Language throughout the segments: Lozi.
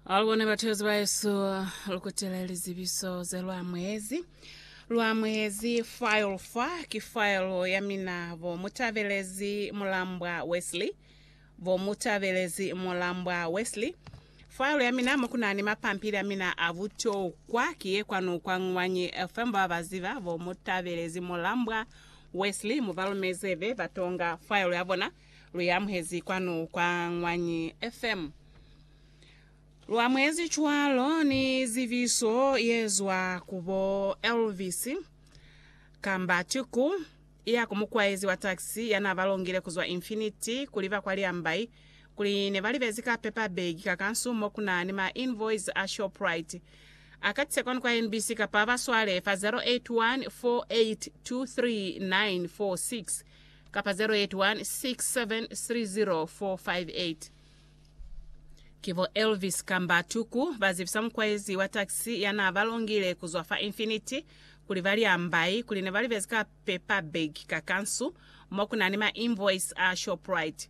Alubone batuyozi baesu, lukutile lizibiso ze lwamuhezi. Lwamuhezi file fa ki file ya mina bo Mutabelezi Mulambwa Wesley. Bo Mutabelezi Mulambwa Wesley. File ya mina mo kunani mapampili a mina a butokwa ki ye kwanu kwa Ngwanyi FM ba ba ziba bo Mutabelezi Mulambwa Wesley mubalumeze be batonga file ya bona. Lu i amuhezi kwanu kwa Ñwanyi FM. Lu amuhezi cwalo ni zibiso ye zwa ku bo Elvis kamba Tiku, iya ku mukwaezi wa taxi ya n'a ba longile ku zwa Infinity ku liba kwa Liambai, kuli ne ba libezi ka paper bag ka kansu mo ku na ni ma invoice a Shoprite. A katise kwanu kwa NBC kapa a ba swale fa 081 4823 946. kapa 0816730458. Ki bo Elvis kamba Tuku bazibisa mukwaezi wa taxi yanaabalongile kuzwa fa Infinity kuli bali ambai kuli nebalibezi ka paper bag ka kansu mokunani ma invoice a Shoprite.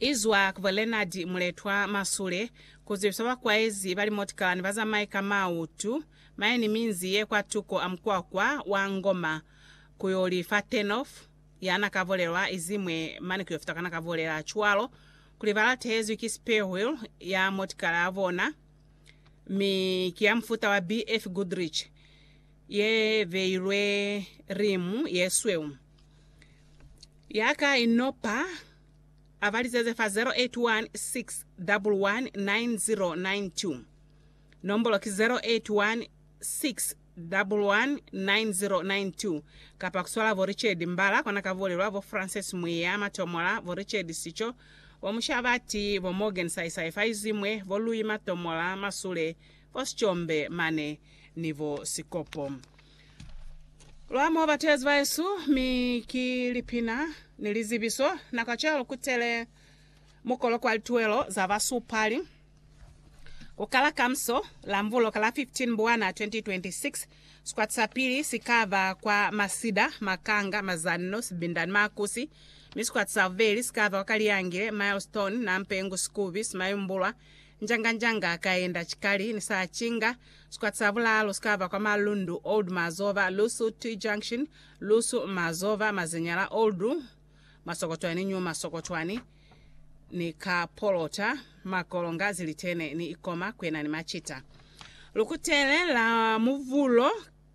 izwa ku bo Leonard Muletwa Masule, kuzwibisa bakwaezi ba limotikalani bazamaye ka mautu, maeni minzi ye kwatuko a mukwakwa wa Ngoma kuyoli fa turnoff yana ka volelwa izimwe mane kuyofita kana ka volela cwalo kuli balatehezwi ki spare wheel ya motikala ya bona mi ki ya mufuta wa BF Goodrich ye beilwe rimu ye sweu. Ya ka i nopa, a ba litseze fa 081 611 9092. Nombolo ki 081 611 9092 kapa ku swala bo Richard Mbala kwa na ka bulelwa, bo Frances Mwiya, Matomola, bo Richard Sicho, bo Mushabati, bo Morgan Saisai fa izwi mwe, bo Lui Matomola, Masule, Bo sicombe mane ni bo sikopo. Lwa mo ba tezi baesu, mi ki lipina ni lizibiso. Na kacwalo ku tele mukolo kwa lituelo za basupali ku kala kamso la Mvuloka la 15 Mbwana 2026. Sikwati sa pili si ka ba kwa Masida, Makanga, Mazanno, Sibinda ni Makusi, mi sikwati sa bubeli si ka ba kwa Kaliyangile, Milestone, Nampengu, Sikubi, Simayumbulwa Njanga-njanga kaenda Chikali ni sa Chinga, sikwati sa bulaalu sikaba kwa Malundu, Old Mazoba, Lusu, T-Junction, Lusu, Mazoba, Mazinyala, Old Masokotwani, New Masokotwani, ni ka Polota, Makolonga, Zilitene ni Ikoma, kwena ni Machita. Lukutele la Muvulo.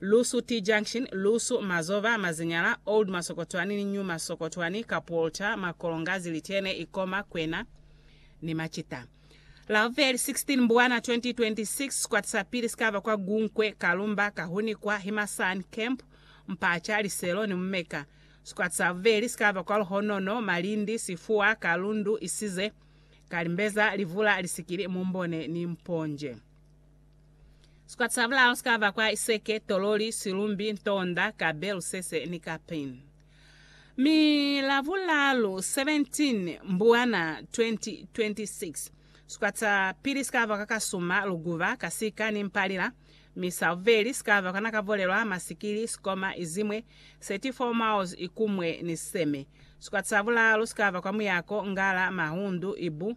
Lusu T Junction, Lusu, Mazoba, Mazinyala, Old Masokotwani ni New Masokotwani, Kapolta, Makolongazi, Litene, Ikoma, Kwena ni Macita. Lavubeli 16 Mbwana 2026, sikwata sa pili si ka ba kwa Gunkwe, Kalumba, Kahunikwa, Himasan, Camp, Mpacha, Liselo ni Mumeka. Sikwata sa bubeli si ka ba kwa Luhonono, Malindi, Sifuwa, Kalundu, Isize, Kalimbeza, Livula, Lisikili, Mumbone ni Mponje. Sikwata sa bulalu si ka ba kwa iseke, tololi, silumbi, ntonda, kabe, lusese, ni kapin. Mi Labulalu 17 Mbuwana 2026, sikwata sa pili si ka ba kwa kasuma, luguba, kasika, ni mpalila, mi sa bubeli si ka ba kwa nakavolelwa, masikili, sikoma, izimwe, 34 miles ikumwe ni siseme. Sikwata sa bulalu si ka ba kwa muyako, ngala, mahundu, ibu,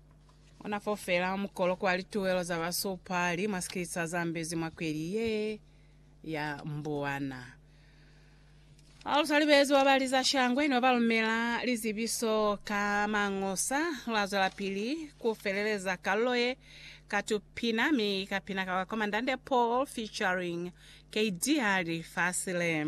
Ona fo fela mukolo kwa lituwelo za basupali mwa sikisa zambezi mwa kweli ye ya mbuwana. A lu salibezi wa bali za shangwe ne ba lumela lizibiso ka mangosa, lwa zwelapili ku feleleza kalulo ye ka tupina mi ka pina ka kwa Komandante Paul featuring Kd Hali Fasile.